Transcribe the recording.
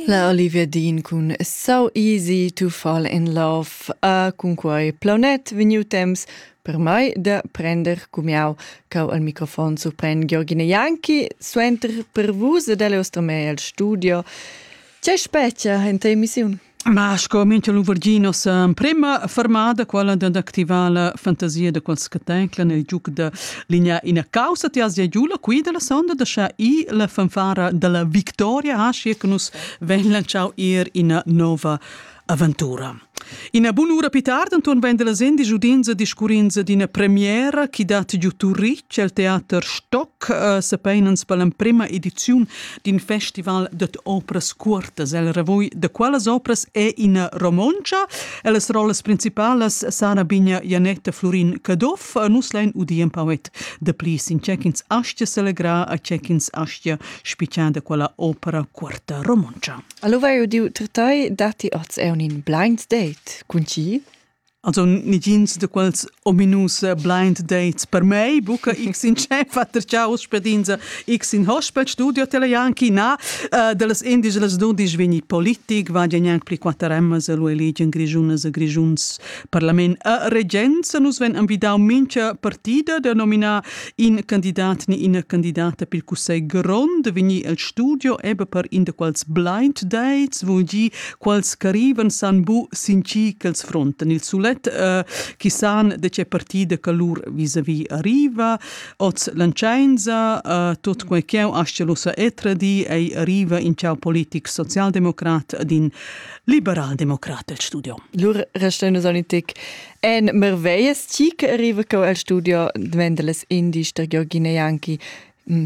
La Olivia Dean cun So Easy to Fall in Love a cunquai plaunet vegniu temps per mai da prender cumiau cau al microfon surpren Georgina Janki suenter per vus ed el ostromei al studio C'è specchia in te emissiun? Ma scominto Luvergino sa prima fermada quella dad activare la fantasia de quels che tenclan il giuc de Ligna ina causa ti has giu la qui della sonda da scha i la fanfara della victoria ha schi che nus ven lanciau ir ina nova aventura. Ina bunura più tardi Anton vende la zendi giudinza discurrinza d'ina premiera che dat giù Turich al teater Stock uh, eh, se peinans per l'emprima edizione d'in festival dad opras cuortas. El revoi da quellas opras è ina romontscha. Las rollas principalas Sara Bigna, Janetta Florin Caduff, nus lein udir in poet da pli sin tschecins astia selegra a tschecins astia spicciada quella opera cuorta romontscha. Allora eu diu ter tai datti oz eun in blains date cun chi? Also negins da quels ominus blind dates per mei, buca x in scheffa ter tgau spedinza, x in hospital studio telejan chi na, uh, dallas indies las dudisch vegni politic, va gnanc pli quatter emmas lu eligen grischunas e grischuns parlament. A regenza nus ven envidau mincha partida da nominar in candidat ni ina candidata pil cussegl grond, vegni el studio ebbe per in da quels blind dates, vul gi quals ch'arrivan san bu sin chi ch'els frontan il sulet uh, chi san de che partida che lur vis-a-vis arriva oz l'anchainza uh, tot quei ch'eu ascelusa etra di ei arriva in ciao politic socialdemocrat din liberaldemocrat el studio Lur restenu sanitic en merveias ti che arriva cau al studio Dvendeles indi ster Giorgina Janki mm,